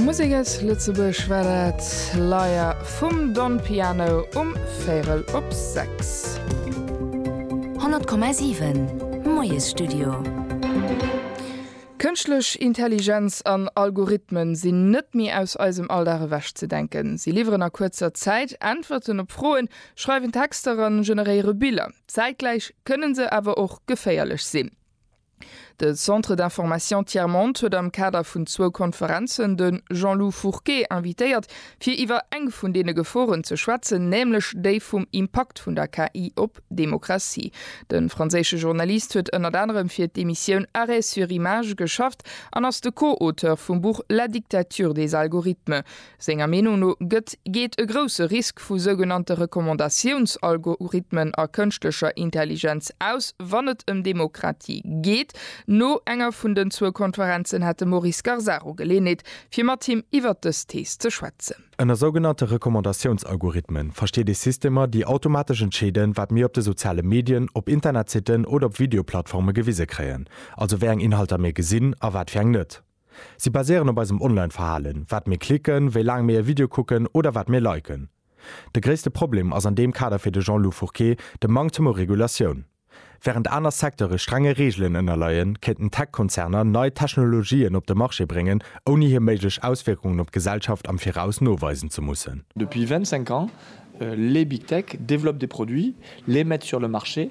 Musek aus Lëtzebuerg war dat, Liar vum Don Piano um véirel op sechs. 100,7 Moiesstudio. Kënschtlech Intelligenz an Algorithmen sinn net méi aus eisem Alldag ewech ze denken. Si liwweren a kuerzer Zäit Äntwerten op Froen, schreiwen Texter an generéiere Biller. Zäitgläich kënnen se awer och geféierlech sinn. De Centre d'information Tiers Monde huet am Kader vun zwou Konferenzen de Jean-Lou Fourquet invitéiert, fir iwwer eng vun deene Geforen ze schwätzen, nämlech déi vum Impakt vun der KI op d'Demokratie. De franséische Journalist huet ënnert anerem fir d'Emissioun Arrêt sur image geschafft an ass de Co-Auteur vum Buch La dictature des algorithmes. Senger Meenung no gëtt, geet e grousse Risk vu sougenannte Recommandatiouns-Algorithmen a kënschtlecher Intelligenz aus, wann et ëm Demokratie geet. No enger vun den zwou Konferenzen hätt de Maurice Scarsaro Geleeënheet, fir mat him iwwert dës Thees ze schwätzen. Ënner sougenannte Recommandatiouns-Algorithmen versteet ee Systemer, déi automatesch entscheeden, wat mir op de soziale Medien, op Internetsitten oder op Videoplattforme gewise kréien, also wéi eng Inhalter mir gesinn a wat fir eng net. Si baséieren op eisem Online-Verhalen, wat mir klicken, wéi laang mir e Video kucken oder wat mir liken. De gréisste Problem ass an deem Kader fir de Jean-Lou Fourqué de Manktem u Regulatioun. Wärend aner Secteure strenge Reegelen ënnerleien, kéinten Tech-Konzerner nei Technologien op de Marché bréngen, ouni hir méiglech Auswierkungen op d'Gesellschaft am Viraus noweisen ze mussen. Depuis 25 ans, les Big Tech développent des produits, les mettent sur le marché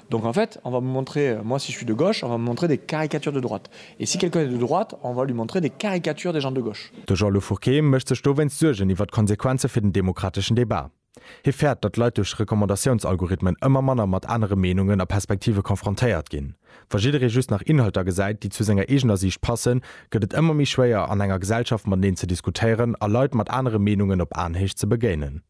Donc en fait, on va me montrer, moi si je suis de gauche, on va me montrer des caricatures de droite. Et si quelqu'un est de droite, on va lui montrer des caricatures des gens de gauche. De Jean-Lou Fourquet mécht sech dowéinst Suergen iwwert d'Konsequenze fir den demokrateschen Debat. Hie fäert, datt Leit duerch Recommandatiounsalgorithmen ëmmer manner mat anere Meenungen a Perspektive confrontéiert ginn. Wa jidderee just nach Inhalter gesäit, déi zu senger eegener Siicht passen, gëtt et ëmmer méi schwéier, an enger Gesellschaft mateneen ze diskutéieren a Leit mat anere Meenungen op Aenhéicht ze begéinen.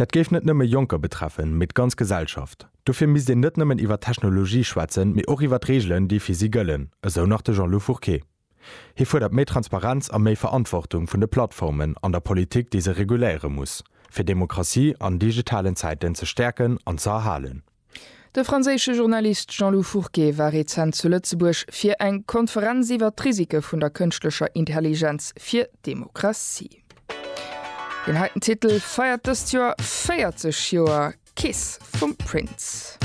Dat géif net nëmme Jonker betreffen, mee d'ganz Gesellschaft. Dofir misst een net nëmmen iwwer Technologie schwätzen, mee och iwwer d'Reegelen, déi fir si gëllen, esou nach de Jean-Lou Fourquet. Hie fuerdert méi Transparenz a méi Verantwortung vun de Plattformen an der Politik, déi se reguléiere muss, fir Demokratie an digitalen Zäiten ze stäerken an ze erhalen. De franséische Journalist Jean-Lou Fourquet war rezent zu Lëtzebuerg fir eng Konferenz iwwer d'Risike vun der kënschtlecher Intelligenz fir d'Demokratie. Deen heiten Titel feiert dëst Joer 40 Joer, Kiss vum Prince.